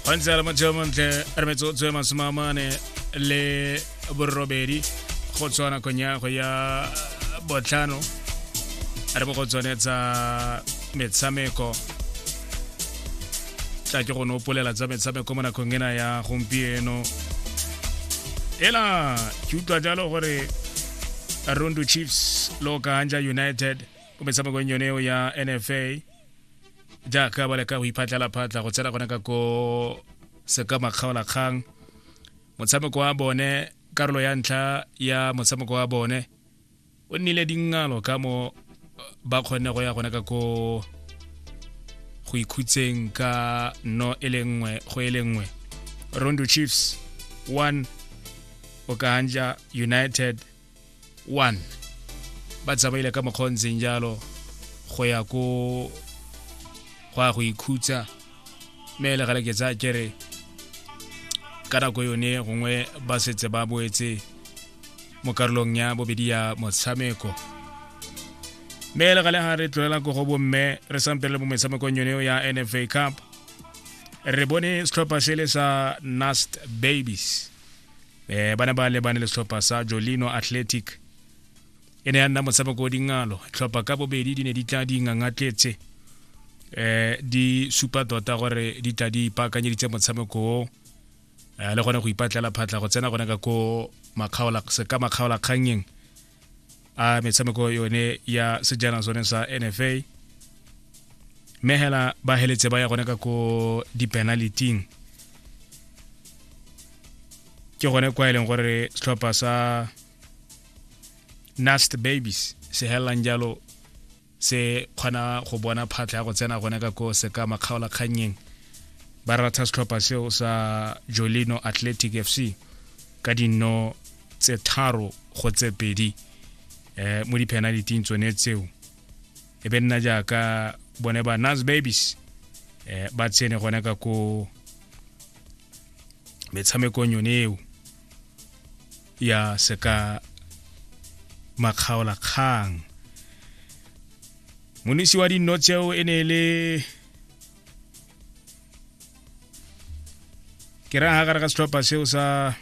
gantsi a lamatseo montle re metsotso e masome a mane le borobedi go tswa nakong ya go ya botlhano re bo go tsone tsa metshameko tla ke go nopolela tsa metshameko mo nakong ena ya gompieno ela ke utlwa jalo gore rundu chiefs lo kaanja united mo metshamekong yone eo ya nfa jaaka ba leka go iphatlhela phatlha go tsena gone ka ko seka makgaolakgang motshameko wa bone karolo ya ntlha ya motshameko wa bone o nnile dingalo ka mo ba kgonne go ya gone ka ko go ikhutseng ka no e le nngwe go e le nngwe rondo chiefs 1 okahanja united 1 ba tsamaile ka mokgwa o ntseng jalo go ya ko go ya go ikhutsa mme le gale ke tsa kere ka nako yone gongwe ba setse ba boetse mo karolong ya bobedi ya motshameko mme le gale ga re tlolela ko go bomme re sampe le mo metshamekong yone ya nfa cup re bone setlhopha se le sa nast babies eh bana ba lebane le setlhopha sa jolino athletic e ne ya nna motshameko o dingalo tlhopha ka bobedi di ne di tla di ngangatletse eh di supa tota gore di tla di ipaakanyeditse motshameko o eh, le gone go ipatlela phatla go tsena gone ka ko makgaola se ka makgaola kgangeng a metshameko yone ya sejana sone sa nfa mme hela ba heletse ba ya gone ka ko di-penaliting ke gone kwa e leng gore setlhopha sa nast babies se helelang jalo se kgona go bona phatlha ya go tsena gone ka ko se ka makgaolakgannyeng ba ratha setlhopha seo sa jolino athletic f c ka dinno tse tharo go tse pedi um mo di-penaliting tsone tseo e be nna jaaka bone ba nas babies um ba tsene gone ka ko metshamekong yone eo ya seka makgaola kgang monisi wa dinno tseo e ne e le ke raya ga gare ga setlhopha seo sa